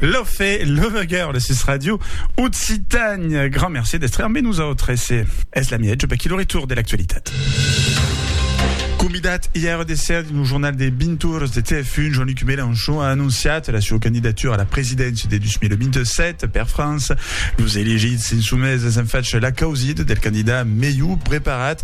Lofe, Love Girl, sus Radio Occitània. Grand merci d'estre amb nosaltres. Es la miètge per qui lo retour de l'actualitat. Convidat ièr de ser dins lo jornal de 20 oras de TF1, Jean-Luc Mélenchon a anonciat la sua candidatura a la presidéncia de 2027. Per França, los elegits insumèses an fach l'acausit del candidat melhor preparat.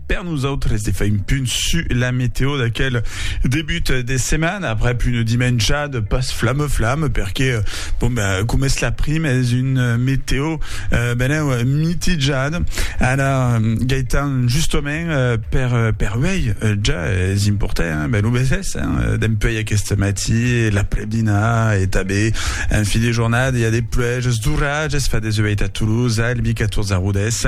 Per nosautres de far un punt su la meteo d'aquel debut de setmana après une dimenjada pas flamme flamme perque bon ben com es la prime es une meteo euh, ben euh, mitijada ara Gaëtan justament euh, per euh, per uei euh, ja es important hein, ben lo beses hein, euh, dempuei aquest matí la predina et abé en fi de jornada il y a des plueges d'orages fa des ueit a Toulouse Albi 14 a Rodès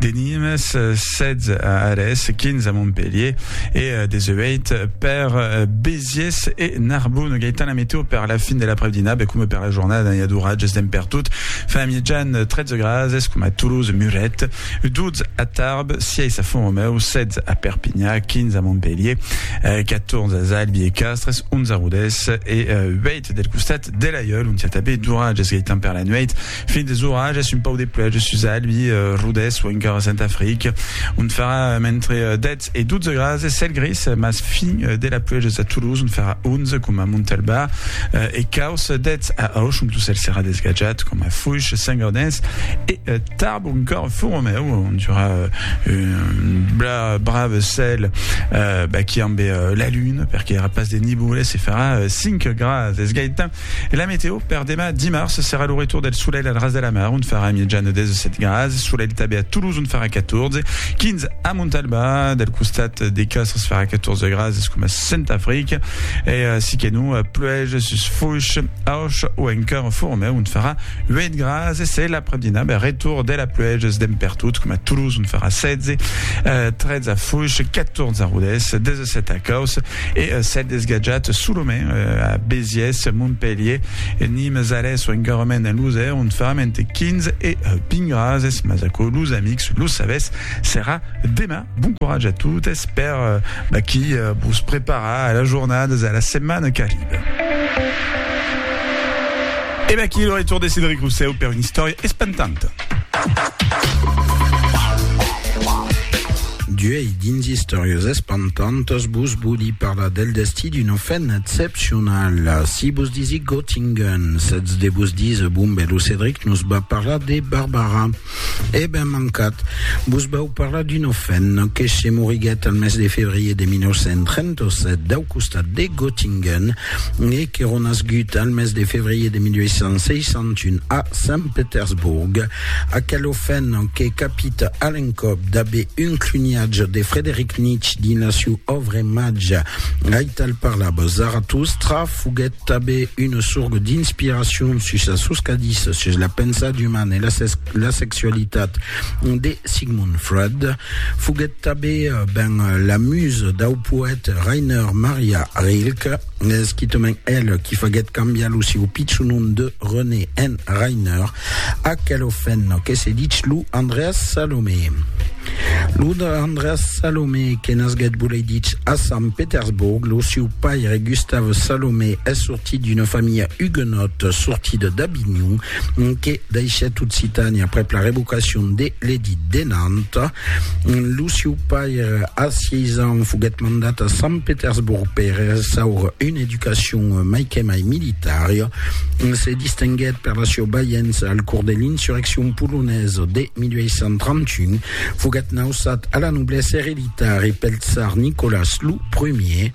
De Nimes, 16 a Arès, 15 a Montpelhier e 18 per Béziers e Narbonne. Gaëtan, la météo per la fin de l'après-dinà, be coma per la jornada, n'hi a d'oratges d'en pertot. Fa a mitjan 13 grads, es coma a Toulouse, Muret, 12 a Tarbes, 6 a Font-Romeu, 16 a Perpinyà, 15 a Montpelhier, 14 a Zalbi e Castres, 11 a Rodés e 8 del costat de l'Aiòl, ont i a tanben d'oratges, Gaëtan, per la nuèit. Fin des orages, un pauc de pluèja sus Albi, Rodés o encara Sant Afric, ont farà entre 10 e 12 grases, cèl gris, mas fin de la pluèja sus a Toulouse, ont farà 11, coma a Montalbà, e caus 10 a Auch, ont lo cèl serà desgatjat, coma a Foish, Saint-Gaudens e Tarbes, o encara Font-Romèu, ont i aurà un brave cèl baqui ambe la luna, perque i aurà pas de niboles, e farà 5 grases. Gaetan. E la meteo per demà dimars serà lo retour del solelh al ras de la mar, ont farà mièjan de 17 grads, solelh tabé a Toulouse ont farà 14, 15 a Montalba, del costat de Castres farà 14 grads, es coma Cent Africa, e si que non pluèja sus Foix, Auch o encara Fourmeu ont farà 8 grads, e se l'après-dinà ben retour de la pluèja es demb pertot, coma Toulouse ont farà 16, 13 a Foix, 14 a Rodés, 17 a Causse, E s'ètz desgatjat solament a Béziers, Montpelhier, Nimes, Arès o encarrement en Losèr, ont faram entre 15 e 20 grases, mas aquò los amics lo sabètz, serà demà. Bon coratge a totes per vaquí vos preparar a las jornadas e a la setmana qu'arriba. E vaquí lo retorn de Cedric Rousseau per una istòria espantanta. D'uèi dins Istòrias espantantas vos vòli parlar del destí d'una femna excepcionala. Si vos disi Göttingen, sètz de vos díser, bon ben, lo Cedric nos va parlar de Barbara. È ben mancat. Vos vau parlar d'un ofèn que se moriguèt al mes de febrier de 1937 dau costat de Göttingen e que ronasgut al mes de febrier de 1861 a Sant Petersborg. Aquel ofèn que capita a l'encòp d'aver un cluniatge de Frederic Nietzsche dins la siu òvre Màgia, aital parlava Zaratustra, foguèt Tanben una sorga d'inspiracion sus la soscadissa sus la pensat umana e la sexualitat de Sigmund Freud foguèt tanben ben la musa dau poèt Rainer Maria Rilke, esquitament el qui faguèt cambiar lo sieu pichon nom de René en Rainer, Aquel ofèn que se dich lo Andreas Salomé. Lo Andreas Salomé que nasguèt volei dich a Sant Petersborg, lo siu paire Gustav Salomé es sortit d'una familha huguenòt sortida d'Avinhon que daishèt Occitània aprèp la revocacion de l'Edit de Nantes. Lo siu paire a 6 ans foguèt mandat a Sant Petersborg per ressaure una educacion mai que mai militària. se distinguèt per la sieu balhença al cors de l'insurreccion polonesa de 1831, foguèt nausat a la noblesa ereditari pel tsar Nicolas lo Primier,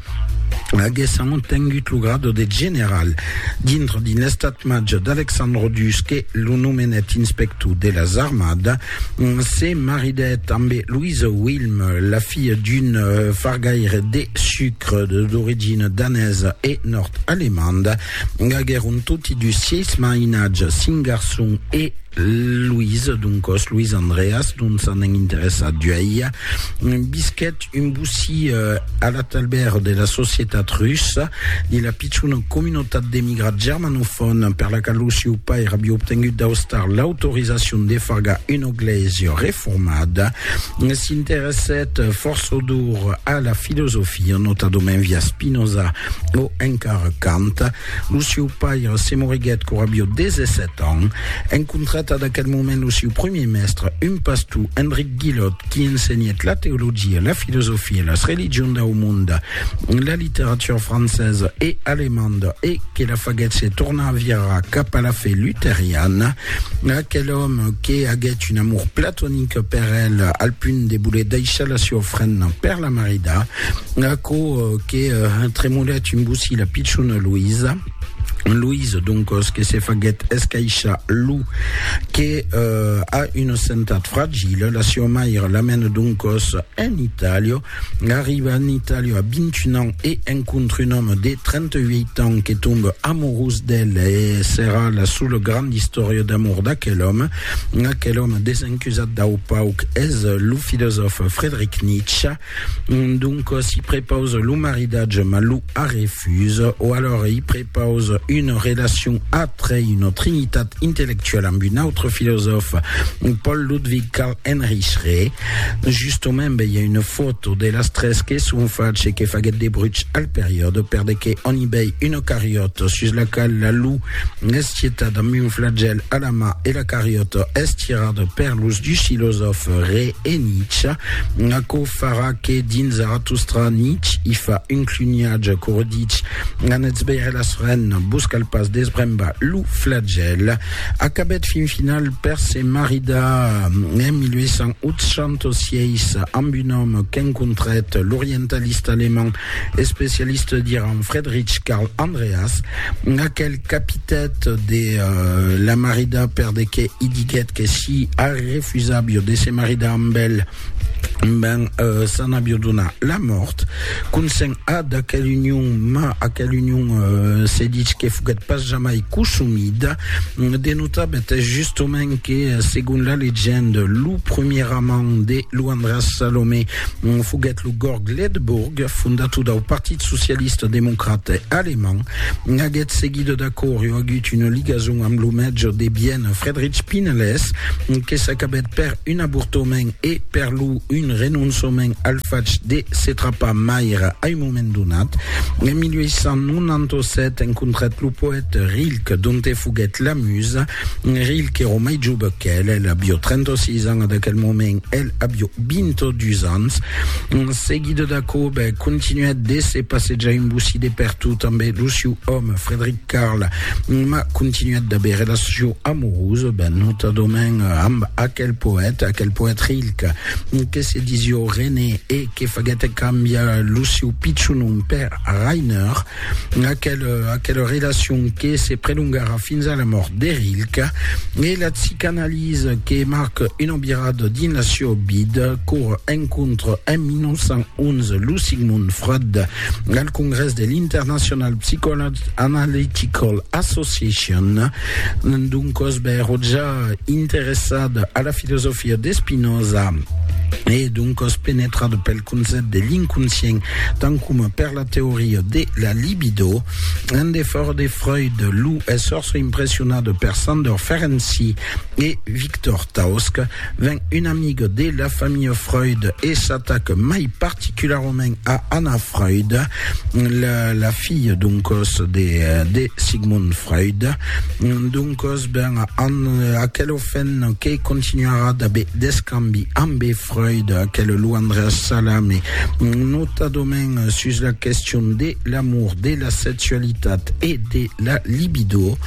aguèssant obtengut lo grado de general dintre d'un estat-màger d'Alexandre Dusque, lo nomenèt inspector de las armadas, Se maridèt ambe Louise Wilm, la filha d'un euh, fargaire de sucre d'origina danesa e nòrd-alemanda. Aguèron toti dus sièis mainatges, cinc garçons e Louise, doncòs Louise Andreas, dont s'anèn interessat d'uèi. Visquèt Un bocí a la talbèr de la societat russa, de la pichona comunotat d'emigrats germanofòn per la qual lo sieu pair aviá obtengut d'Austar l'autorizacion de fargar una glèisia reformada, s'interessèt forçodor a la filosofia, notadament via Spinoza o encara Kant. Lo sieu pair se moriguèt quora aviá 17 ans. Encontrat ad aquel moment lo sieu premier mèstre, un pastor, Enric. Guillot, qui ensenhèt la teologia, la filosofia, las religions dau monde, la literatura francesa e alemanda e que la faguèt se tornar a virar cap a la fe luteriana, aquel òme que aguèt un amor platonic per el al punt de voler daissar la siua ofrenda per la marida, aquò que tremolèt un bocí la pichona Luisa. Louise, doncòs, que se faguèt escaishar lo que a una sentat fragila, la sieu mair l'amène doncòs en Itàlia. Arriba en Itàlia a 21 ans e encontre un òme de 38 ans que tombe amorós d'el e serà la sola granda istòria d'amor d'aquel òme. Aquel òme desencusat dau pauc es lo filosòf Friedrich Nietzsche. Donc si prepause lo maridatge ma lo arrefuse o alors i prepause une relacion atre une trinitat intellectuelle amb un autre filosòfe Paul Ludwig Karl Heinrich Re justement ben i a une foto de las tres que son fache que faguet de bruch al periòde per de que on i vei une cariòta sus la qual la lu es tietat amb un flagèl a la mà e la cariòta es tirada per los dus filosòfe Re e Nietzsche Aquò farà que dins Zarathustra Nietzsche i fa un cluniatge quo ditz, Anètz veire las renes, vos cal pas desbrembar lo flagèl. Acabèt fin final per se maridar en 1886 amb un òme qu'encontrèt, l'orientalista alemand especialista d'Iran Friedrich Karl Andreas, aquel Capitat de la maridar perdequé i diguèt que si Harry refusàvio de se maridar amb el, ben s'an avio donar la mòrt. Consent a d'aquel union, ma aquel union se ditz que foguèt pas jamai cosumida. De notar betès justement que segon la legende, lo premier amant de Luandras Salomé Foguèt lo Gorg Ledebourg, fondator dau Partit Socialista Democrate Alemand. Aguest seguidor d'Acòrio agut una ligason amb lo mètge de Viena Friedrich Pinelès, que s'acabèt per un avortament e per lo un renonçament al fach de se trapar maire a un moment donat. En 1897 encontrèt lo poète Rilke, donte foguèt la musa. Rilke èra mai jove qu'el, el avió 36 ans a d'aquel moment, el avió 22 ans. En seguida d'aquò, bè, continuèt de se passejar un bocí de pertot amb lo siu òme, Frederic Carl, ma continuèt d'aver relacion amorosa, bè, notadament amb aquel poète, aquel poète Rilke, que se disió René e que faguèt cambiar lo siu pichon nom per Rainer. Aquela, aquela relacion que se prelongarà fins a la mòrt de Rilke e la psicanalisa que marca una virada dins la seu vida qu'ora encontra en 1911 lo Sigmund Freud al congrès de l'International Psychoanalytical Association. Doncòs bèro ja interessada a la filosofia de Spinoza e doncòs penetrada pel concèpt de l'inconscient, tant coma per la teoria de la libido. En defòra de Freud, lo esfòrç impressionat per Sandor Ferenczi e Victor Tausk ven un amic de la familha Freud e s'atac mai particularament a Anna Freud, la, la filha doncòs de, de Sigmund Freud. Doncòs, ben, an aquel ofent que continuarà d'aver d'escambi ambe Freud, quel luandre salami, notadament sus la question de l'amour, de la sexualitat e de la libido,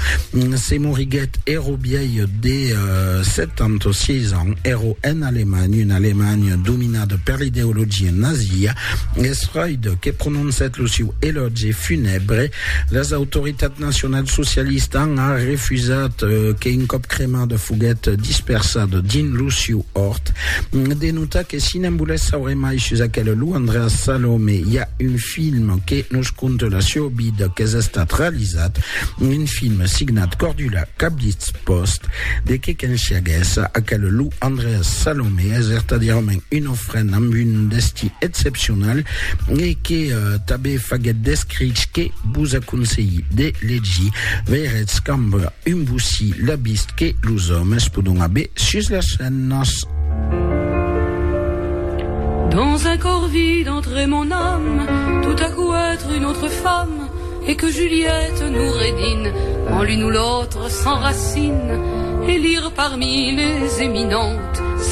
se moriguèt ero biailh de 76 euh, ans, ero en Alemanha, una Alemanha dominada per l'ideologia nazia, es Freud que prononcèt lo siu elògi funèbre Las autoritats nacionalsocialistas an a refusat que un còp cremada foguèt dispersada dins lo siu òrt. De notar que si ne'n volètz saure mai sus aquela lo Andreas Salome i a un film que nos conta la siua vida qu'es estat realizat, un film signat Cordula Cablitz Post, de que qu'ensiaguèss aquela lo Andreas Salome es vertadièrament una ofrenda amb un destí excepcional e que tanben faguèt d'escrich que vos aconselhi de legir, veiretz cambra un bossí la vist que los òmes podon aver sus las femnas. Dans un corps vide entre mon âme Tout à coup être une autre femme Et que Juliette Noureddine En l'une ou l'autre s'enracine Et lire parmi les éminentes